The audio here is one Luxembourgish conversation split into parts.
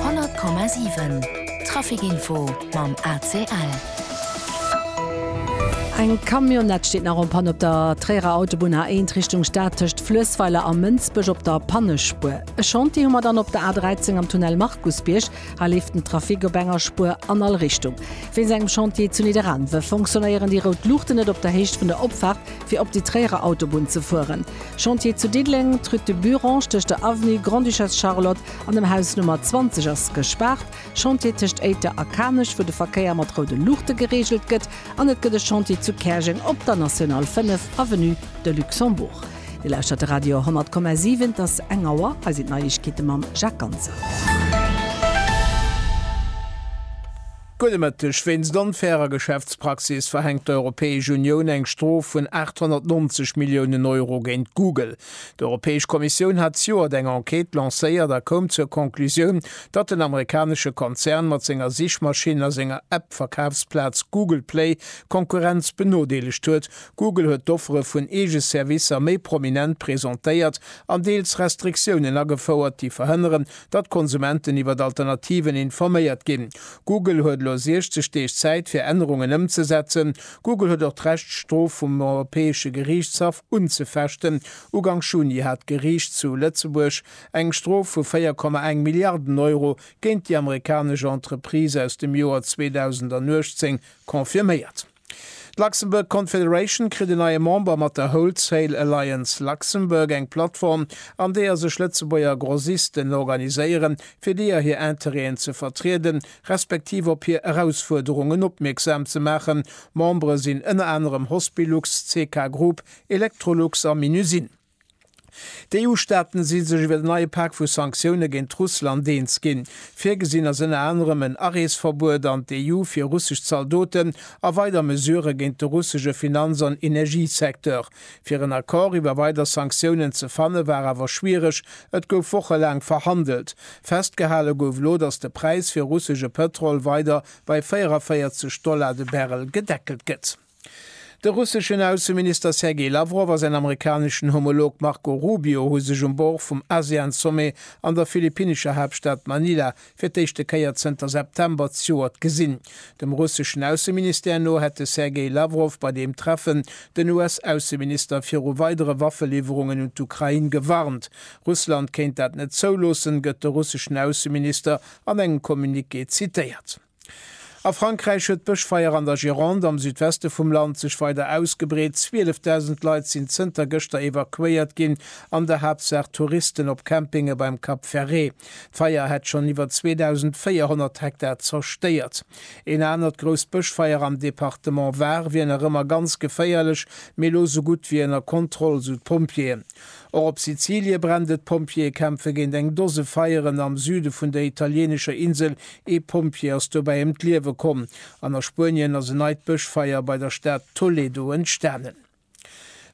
100,7 Traficinfo mam ACL. Eng Camionnette steet nach en Panne op der Tréierer Autobunn A1 Richtung Stad tëscht Fluessweiler a Mënsbech op der Pannespuer. E Chantier hu mer dann op der A13 am Tunnel Markusbierg. Hei leeft den Trafic op enger Spuer an all Richtung. Wéinst engem Chantier zu Nidderaanwe fonctionnéieren déi rout Luuchten net op der Héicht vun der Opfaart. fir op déi Tréierer Autobunn ze fueren. Chantier zu Diddeleng, d'Rue de Burange tëscht der Avenue Grande-Duchesse Charlotte an dem Haus Nummer 20 ass gespaart, Chantier tëscht Éiter a Kanech, wou de Verkéier mat roude Luuchte gereegelt gëtt an et gëtt e Chantier zu Käerjeng op der National 5, Avenue de Luxembourg. Dir lauschtert de Radio 10,7, et ass eng Auer, hei sinn d'Neiegkeete mam Jacques Ganser. Gudde Mëtteg, Wéinst onfairer Geschäftspraxis verhänkt d'Europäesch Unioun eng Strof vun 890 Milliounen Euro géint Google. D'Europäesch Kommissioun hat zejoert eng Enquête lancéiert a koum zur Conclusioun, datt den amerikanesche Konzern mat senger Sichmaschinn a senger App-Verkafsplaz Google Play d'Konkurrenz benodeelegt huet. Google huet d'Offere vun eege Servicer méi prominent presentéiert an deels Restriktiounen agefouert, déi verhënneren, datt d'Konsumenten iwwer d'Alternativen informéiert ginn. Google huet elo 60 Deeg Zäit fir Ännerungen ëmzesetzen. Google huet och d'Recht d'Strof vum Europäesche Geriichtshaff unzefechten. Ugank Juni hat d'Geriicht zu Lëtzebuerg eng Strof vu 4,1 Milliarden Euro géint déi amerikanesch Entreprise aus dem Joer 2018 confirméiert. D'Luxembourg Confederation kritt en neie Member mat der Wholesale Alliance Luxembourg, eng Plattform, an deeër sech Lëtzebuerger Grossisten organiséieren, fir deeër hir Interêten ze vertrieden, respektiv op hir Erausfuerderungen opmierksam ze maachen. Membere sinn ënner anerem Hospilux, CK Group, Electrolux a Minusine. D'EU-Staaten si sech iwwer en neie Pak vu Sanktioune géint Russland eens ginn. Virgesinn ass ënner anerem en Areesverbuet an d'EU fir russesch Zaldoten a weider Mesurë géint de russesche Finanz an Energiesecteur. Fir en Accord iwwer weider Sanktiounen ze fanne war awer schwiereg, et gouf wochelaang verhandelt. Festgehale gouf elo, datt de Präis fir russesche Pëtrol weider bei 44 Dollar de Barrel gedeckelt gëtt. De russeschen Ausseminister Sergei Lawrow a säin amerikaneschen Homolog Marco Rubio hu sech um Bord vum ASEAN-Sommet an der philippinnescher Haaptstad Manila fir d'éischte Kéier zënter September zejoert gesinn. Dem russeschen Ausseministère no hätt de Sergei Lawrow bei deem Treffen den US-Ausseminister viru weidere Waffeliwwerungen un d'Ukrain gewarnt. Russland kéint dat net zouloossen, gëtt de russeschen Ausseminister an engem Communiqué zitéiert. A Frankräich huet d'Bëschfeier an der Gironde am Südweste vum Land sech weider ausgebreet. 12.000 Leit sinn zënter gëschter evakuéiert ginn, an der Haaptsaach Touristen op Campinge beim Cap Ferré. D'Feier hätt schonn iwwer 2.400 Hektar zerstéiert. Een anert grousst Bëschfeier am Departement Var wier nach ëmmer ganz geféierlech, mee elo sou gutt wéi ënner Kontroll, sou d'Pompjeeën. Och op Sizilie brennt et, Pompjeeë kämpfe géint eng Dose Feieren am Süde vun der italieenescher Insel, ee Pompjee ass dobäi ëm d'Liewe komm an a Spuenien ass en neit Bëschfeier bei der Stad Toledo entstanen.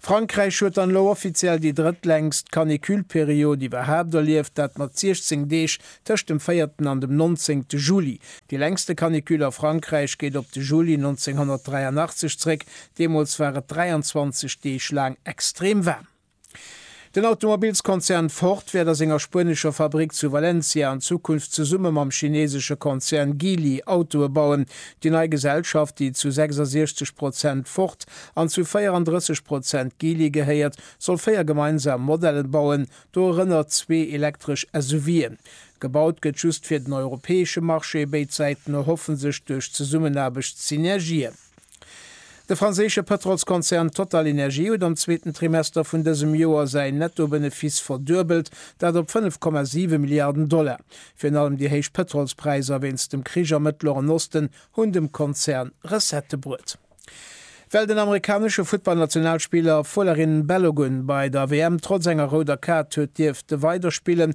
Frankräich huet dann elo offiziell déi drëttlängst Canicule-Period iwwerhaapt erlieft, dat mat 16 Deeg tëscht dem véierten an dem nonzéngte Juli. Déi längste Canicule a Frankräich geet op de Juli 1983 zréck, deemools war et 23 Deeg laang extrem waarm. Den Automobilskonzern Ford wäert a senger spuenescher Fabrick zu Valencia an Zukunft zesumme mam chineesesche Konzern Geely Autoe bauen. Déi nei Gesellschaft, déi zu 66 Prozent Ford an zu 34 Prozent Geely gehéiert, soll véier gemeinsam Modellen bauen, dorënner zwee elektresch SUVen. Gebaut gëtt just fir den europäesche Marché, béid Säiten erhoffen sech duerch d'Zesummenaarbecht Synergien. De franséische Pëtrolskonzern TotalEnergies huet am zweeten Trimester vun dësem Joer säin Netto-Benefiss verduebelt, dat op 5,7 Milliarden Dollar. Virun allem déi héich Pëtrolspräisser wéinst dem Krich am Mëttleren Osten hunn dem Konzern Recettë bruet. Well den amerikanesche Futtball-Nationalspiller Folarin Balogun bei der WM trotz enger rouder Kaart huet dierfte weiderspillen,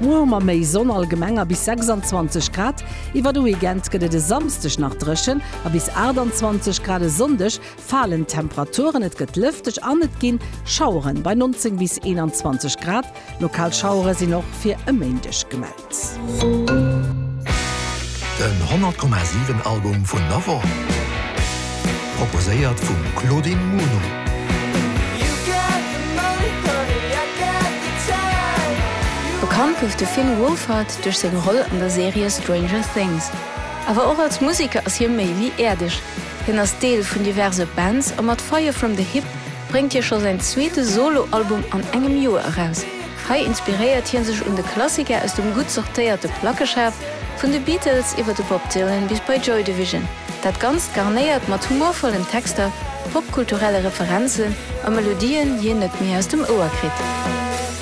Muer hu mer méi Sonn, allgemeng a bis 26 Grad. Iwwer de Weekend gëtt et e Samsdeg nach dréchen a bis 28 Grad. E Sonndeg falen d'Temperaturen, et gëtt lëfteg an et gi Schaueren bei 19 bis 21 Grad. Lokal Schauere sinn och fir e Méindeg gemellt. Den 100,7 Album vun der Woch. Proposéiert vum Claudine Muno. Bekannt gouf de Finn Wolfhard duerch seng Roll an der Serie Stranger Things. Awer och als Museker ass hie méi wéi äerdeg. Hien ass Deel vun diverse Bands a mat Fire From The Hip bréngt hie scho säin zweete Solo-Album an engem Joer eraus. Hei inspiréiert hie sech un de Klassiker aus dem gutt sortéierte Plackeschaf, vun de Beatles iwwer de Bob Dylan bis bei Joy Division. Dat Ganzt garnéiert mat humorvollen Texter, popkulturelle Referenzen a Melodien, déi een net méi aus dem Ouer kritt.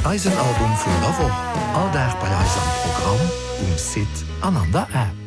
Eisen Album vun der Woch, all Dag bei eis am Programm, um Site an an der App.